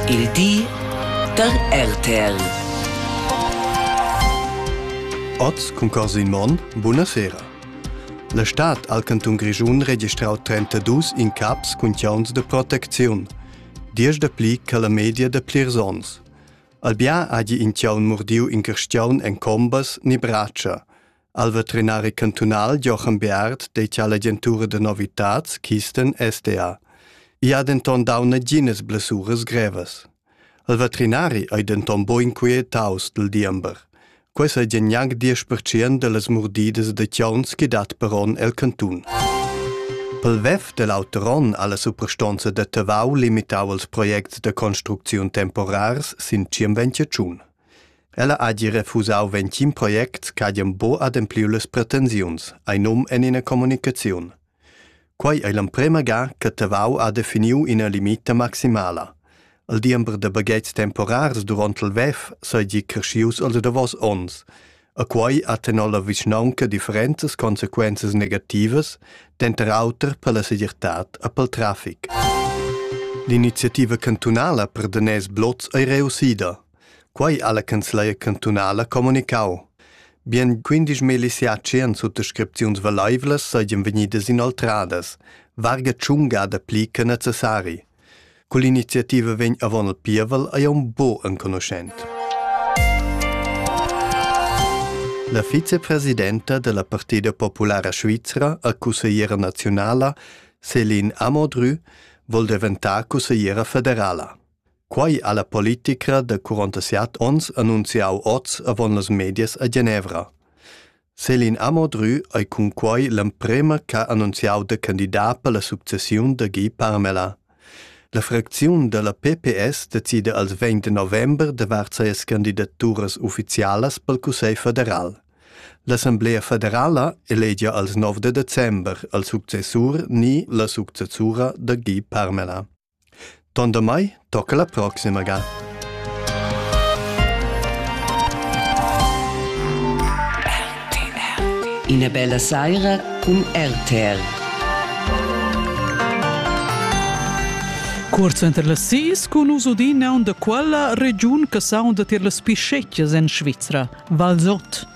Il di da RTL. Oz cun Corsin Monn, buna sera. La stad al cantun Grischun registrau 32 incaps cun chiauns de protecziun, 10 de pli che la media de plirs ons. Albia hagi in chiaun murdiu in carstiaun en combas ni bratscha, Al veterinari cantunal Jochen Beard dettia l'agentura da novitats Kisten SDA. I ha denton dau naginas blessuras grevas. Il veterinari ei denton bo inquietaus dil diember. Quei sa gie gnanc 10% dallas murdidas da chions che dat per onn el cantun. Pel vef del auter onn alla superstonza da Tavau limitau els projects da construcziun temporars sin 25 Ella hagi refusau ventgin project ch'hagen buca adempliu las pretensiuns, ei num en ina communicaziun. Quei ei l'emprema ga che Tavau ha definiu ina limita maximala. Il diember da baghetgs temporars duront il WEF seigi creschius els davos onns. E quei ha tenor la vischnaunca differentas consequenzas negativas, denter auter per la segirtad e pel trafic. L'iniziativa cantunala per daners blots ei reussida. Quei ha la canzleia cantunala comunicau. Bien 15 miliziaci han suttascripziuns valaivlas seigien vegnidas inoltradas, varga tschunga da pli che necessari. Quell'iniziativa vegn avon il pievel ei un bo enconuschent. La vicepresidenta della Partida Populara Svizra a consigliera nazionala, Céline Amodru, vol diventar consigliera federala. Quai ha la politica de 47 ons annunziau oz avon las medias a Genevra. Celine Amodrü ei cunquei l'emprema ch'ha annunziau da candidat per la successiun da Guy Parmelin. La fracziun dalla PPS decida als vegn de november davart sias candidaturas ufficialas pel Cussegl federal. L'Assemblea federala elegia als 9 de december al successur ni la successura da Guy Parmelin. Ton damai tocca la proxima ga. Ina bella saira cun RTR. Cuorz enter las sis cun uso d'ina da quella regiun che saunda tier las pischettas en Svizra, Valsot.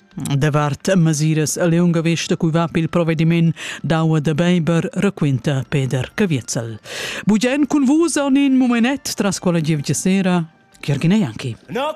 Davart mesiras a lunga vesta cui va pil provvediment d'aua da Beiber raquinta Peder Caviezel. Bugen cun vus en in momenet tras quella gievgia sera, Chirgine Janki. No